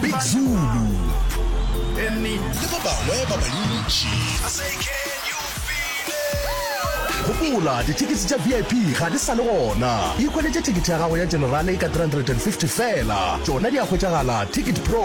Big Zulu le ba bangwe ba bantši. Gopola, dithekete tša VIP ga di sa le gona. Ikhweletše thekete ya gago ya Generale ka R350 feela. Tšona di a hwetšagala Ticket Pro.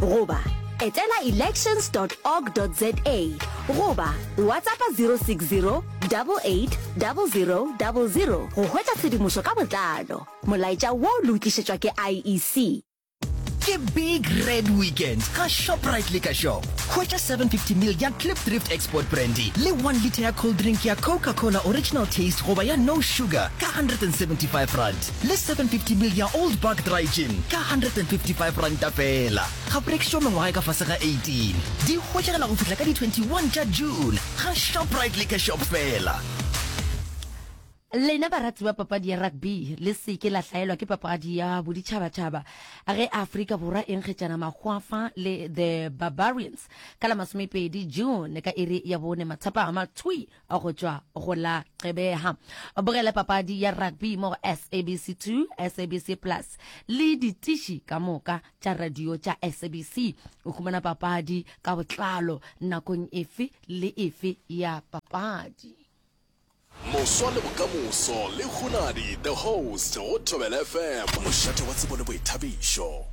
goba etela elections org za goba whatsappa 060 880000 go hwetša tshedimošo ka botlalo molaetša wo lo o tlišetšwa ke iec ke big red weekend ka shoprite le ka shop hwetša 750 mil ya clip drift export brandy le 1 litre ya cold drink ya coca cola original taste goba ya no sugar ka 175 rand le 750 ml ya Old Park Dry Gin ka R155 feela. Ga go rekišwa mengwaga e ka fase ga 18. Di hwetšagala go fihla ka di 21 tša June ga Shoprite Liquor Shop feela. Lena barati ba papadi ya rugby le se ke la hlaelwa ke papadi ya boditšhabatšhaba ge Afrika Borwa e nkgetšana makgwafa le The Barbarians ka la masomepedi June ka iri ya bone matsapama thwi. go tšwa go la qebeha bogele papadi ya rugby mo sabc 2 sabc plus le ditiši ka moka tša radio tša sabc o humana papadi ka botlalo nakong efe le efe ya papadi moswa le bokamoso le hunadi the host go thobela fm mošate wa tsebo le boithabišo